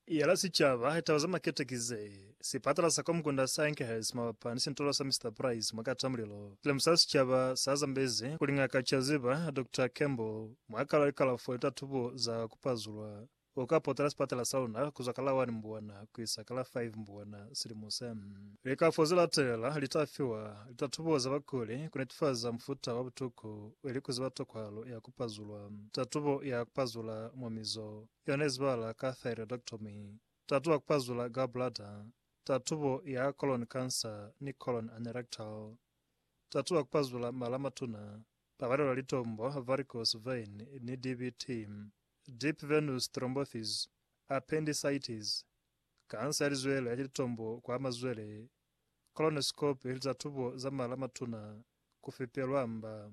Yela sicaba, Taba za makete ki ze, Sipatala sa kwa mukunda sa Enkhurst mabapa ni sintolo sa Mister Price mwa Katamulilo, silemusa sicaba sa Zambezi kuli Ngaka Chaziba, Doctor Campbell, mwa kalo ya likalafo ni tatubo za ku pazulwa, u ka potela sipatala sa luna kuzwa ka la 1 Mbwana kuisa ka la 5 Mbwana silimo se. Likalafo ze latelela li ta fiwa litatubo za bakuli ku netifaza mufuta wa butuku ili ku ziba tokwahalo ya ku. kupazulwa. Tatubo ya kupazula mwa mizo yona izibahala ka thyroidectomy, tatubo ya kupazula gallbladder, tatubo ya colon cancer ni colon anerectal. Tatubo ya kupazula mala a matuna, pabalelwa litombo, varicose vein, ni DVT, deep venous thrombosis, appendicitis, kansa ya lizwele ni litombo kwa mazwele, colonoscopy, litatubo za mala a matuna, kufepelwa mba.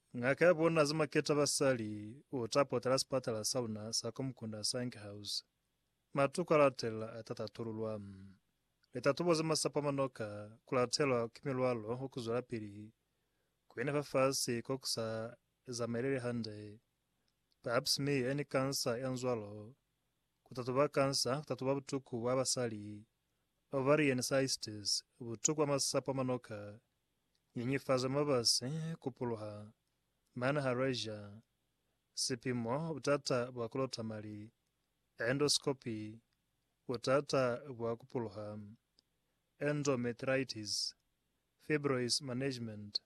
Ngaka ya bona Zimaketa Basali u ta potela sipatala sa luna sa Komkunda Sange House. Matuku a latelela a ta tatululwa. Litatubo ze masapo a manoka ku latelwa ki milwalo wa ku zwelapili ku yena fafasi ko ku sa zamaeleli hande, pap smear ni kansa ya nzwalo, ku tatuba kansa, ku tatuba butuku bwa basali, ovarian cysts, butuku bwa masapo a manoka Nyenyefaza mabasi ku puluha mane ha Russia, sipimo butata bwa ku lota mali, endoscopy, butata bwa ku puluha, endometritis, fibroids management,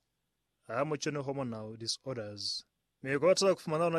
ha mu cwani hormonal disorders. Mi kota ku fumana lona